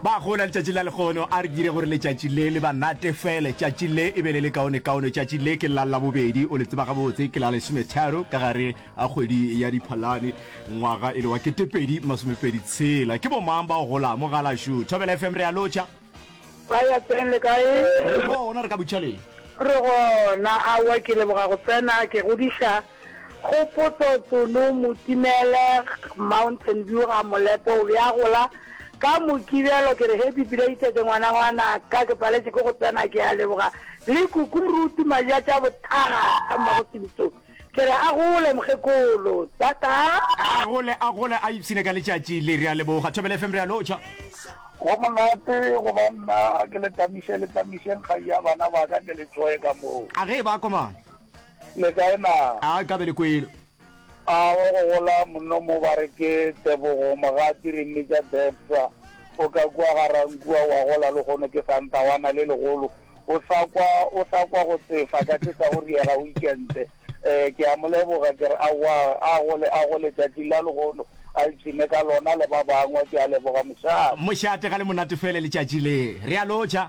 Ba gola letšatši la lehono, a re dire gore letšatši le le ba natefele. Tšatši le e be le le kaonekaone. Tšatši le ke la Labobedi, o le tseba gabotse, ke la lesometharo ka gare ga kgwedi ya Diphalane, ngwaga e le wa ketepedi masomepedi tshela. Ke bomang ba o golang mo Galaxo? Thobela FM re a lotšha. Ba ya teng le kae? Re gona, re ka butšhaleng. Re gona, aowa ke leboga go tsena, ke godiša. Kgopotso, Tsono Motimele, Mountain View ga Molepo o be a gola ka Mokibelo ke re Happy belated ngwana ngwana ka ke paletše ke go tsena ke a leboga le Kukurutu Maja tša Bothaga ka mmago Sintso ke re a gole mokgekolo Tata. A gole a gole a ipshine ka letšatši le re a leboga Thobela FM re a lotšha. Go monate go ba nna a ke le tamiše le tamišeng kgai ya bana ba ka ke le tsoe ka moo. A ge e ba komana. Le kae naa? A ka be le kwele. A o go gola monno mo ba re ke Tebogo Mogati re mmitša Debsa. O ka kua ga Rankua wa gola lehono ke Santawana le legolo. O sa kwa, o sa kwa go tsefa ka tše tsa go riega weekente. Ee, ke a mo leboga. Ke re, Aowa, a gole, a gole tšatšing la lehono, a ipshine ka lona le ba bangwe. Ke a leboga, mošate. Mošate ga le monate fele letšatši le. Re a lotšha.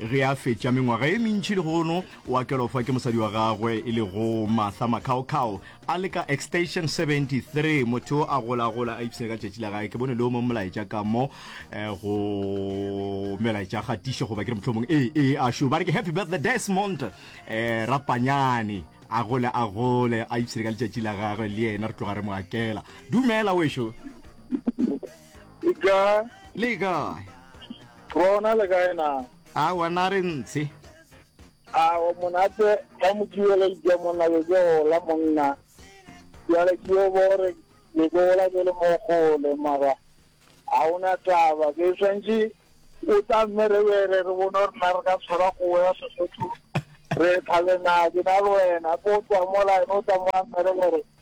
Ge a fetša mengwaga e mentši lehono, o a kelofa ke mosadi wa gagwe e lego Martha Makhaokhao a le ka extension 73. Motho yo a golagola a ipshina ka tšatši la gage. Ke bone le yo mong molaetša ka mo eh, go melaetša ga tiše goba ke re mohlomong ee ee a šo ba re ke happy birthday Desmond eh, rapanyane a gole a gole a ipshine ka letšatši la gagwe le yena re tloga re mo akela dumela wešo E ka. Le kae? Rona le kae na? A wa na re ntshe. A wa monate ka mokibele le ke monna le ke gola monna. Jale ke yo bore le ke gola ke le mo gole mara a ona taba ke swantši o tla mme re bere re bone gore na re ka tshwara kgogo ya Sesotho re tlhabe na ke na le wena ko tswa mo line o tla mo a mme re bere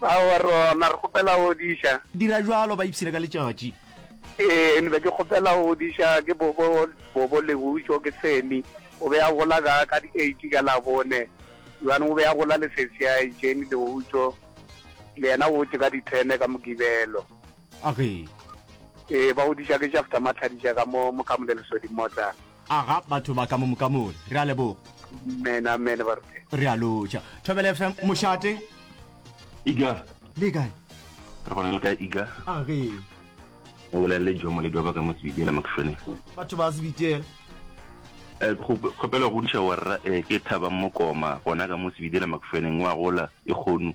Bao a re, Ona, re kgopela go diša. Dira bjalo, ba ipshine ka letšatši. Ee, nbe ke kgopela go diša. Ke bobo, bobo Lehutšo, ke Sammy. O be a gola ka, ka di eight ka Labone. Bjale o be a gola le sesi ya hae Jane Lehutšo, le yena o wetše ka di ten ka Mogibelo. Age. Ee, ba go diša ke Shafta Matlhadiša ka mo, mo Kamolelosodi mo tla. Aga batho ba ka mo moka mole. Re a leboga. Amen, amen, ba re. Re a lotšha. Thobele FM, mošate. Iga. Le kae? Re gona le kae Iga? A ge. O bolelele jo moledi wa ba ka mo Sebitiela Makšone. Batho ba Sebitiela. Eh, kgopela go diša warra eh ke Thabang Mokoma gona ka mo Sebitiela Makšoneng wa gola e kgonu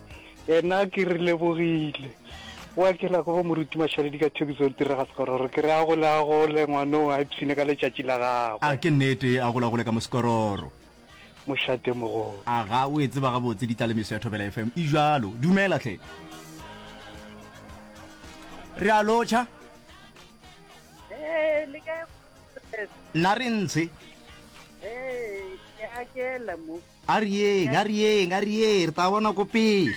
Ena ke re lebogile. O a kela go moruti Mashaledi ka thekiso le tirega sekororo. Ke re a gole a gole ngwano a ipshine ka letšatši la gagwe. A ke nnete a gole a gole ka mosekororo. Mošate mogolo. A ga o e tseba gabotse ditlalemiso ya Thobela FM e jalo. Dumela hle. Re a lotšha. Eh le kae? Nna re ntshe. Eh ke a kela mo. A re yeng, a re yeng, a re yeng, re tla bona ko pele.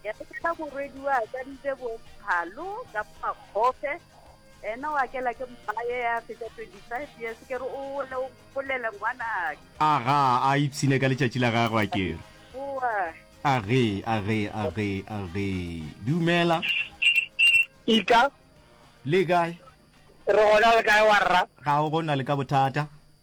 Ya re ka morwedi wa ka ntse bo phalo ka makgofe. Ena wa kela ke mmaye ya feta 25 years ke re o le o polele ngwana. A ga a ipsine ka letšatši la gagwe a ke re. Boa. A ge, a ge, a ge, a ge. Dumela. Ika. Le kae? Re gona le kae wa rra? Ga o gona le ka bothata.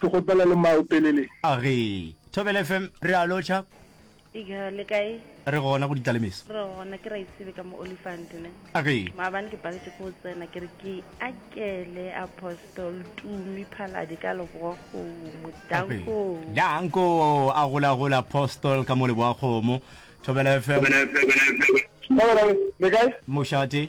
Ke kgopela le maopelele. A re, Thobela FM, re a lotšha. Ika, le kae? Re gona go Ditlalemeso. Re gona, ke Raesibe ka mo Olifant, ne? A re. Maabane ke paletše ke go tsena, ke re ke akele Apostol Tumi Phaladi ka Leboakgomo. Danko! Danko! A gola gola Apostol ka mo Leboakgomo. Thobela FM. Thobela FM. Thobela FM. Le kae? Mošate.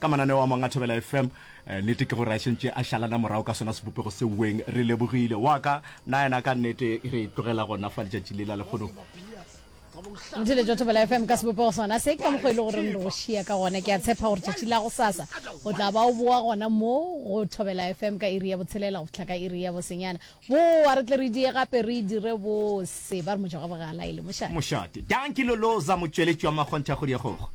ka mananeo a mangwe a thobela fm eh, nete ke gore a šentše a šalana morago ka sona sebopego seuweng re lebogile wa ka na yena ka nnete re tlogela gona fa letšatši le la lekgono ntshele jwa thobela fm ka sebopego sona se ka mokgwa e le goreng re šia ka gona ke a tshepa gore tšatši la go sasa o tla ba o boa gona mo go thobela fm ka iri ya botshelela go fitlha ka iri ya bosenyana boa re tle re die gape re dire bose ba re mojago bogala e le mošate mošate danki loloza motšweletši wa makgontha kgodi ya gogo